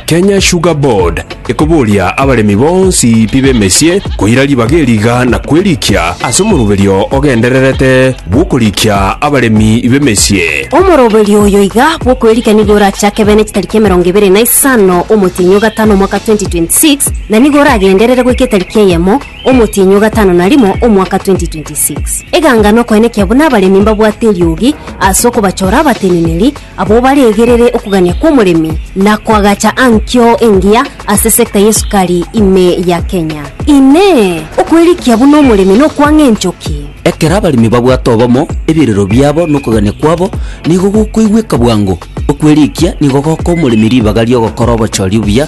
Kenya Sugar Board ekoboria abaremi bonsi pi b'emesie koira ribaga eriga na kwerikia ase omoroberio ogendererete bw'okorikia abaremi b'emesie. Omoroberio oyo iga bw'okwerikia nigo orachake bene chitariki emerongo ebere na isano omotienyi o gatano omwaka 2026 na nigo oragenderere goika etariki eyemo omotienyi o gatano na rimo omwaka 2026. Eganga nokoenekia buna abaremi mbabwate eriogi ase okobachora abateneneri Abwo baregerere okogania kw'omoremi na koagacha ankio engiya ase sector y'esukari ime ya Kenya. Inee! Okwerikia buna omoremi nokwang'a enchoki? Ekero abaremi babwate obomo, ebirero biabo na okogania kwabo nigo gokoigweka bwango. Okwerikia nigo gokoa omoremi ribaga ri'ogokora obochori obuya,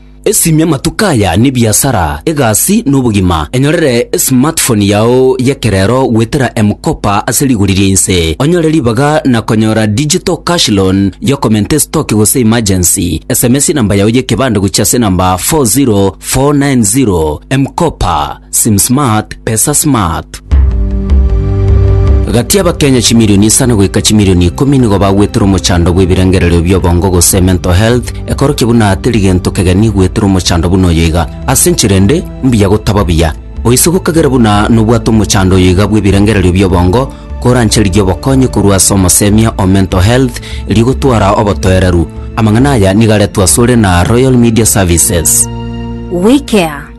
Esimia amatuko aya n'ebiasara, egasi, na obogima. Enyorere esmartphone yao y'ekerero goetera M-Kopa ase rigori ria inse, onyore ribaga na konyora digital cash loan y'okomenta esitoki gose emergency. Sms namba yao y'ekebande gochia ase namba 40490. M-Kopa. Sim smart, pesa smart. Gati y'Abakenya chimilioni isano goika chimilioni ikomi nigo bagwetire omochando bw'ebirengererio bi'obongo gose mental health, ekorokia buna teri gento kegeni gwetera omochando buna oyo iga. Ase enchera ende, mbuya gotaba buya. Oise gokegera buna nobwate omochando oyo iga bw'ebirengererio bi'obongo, koranche riria obokonyi korwa ase omosemia o mental health rigotwara obotoereru. Amang'ana aya nigo aretwe asore na Royal Media Services. WeCare.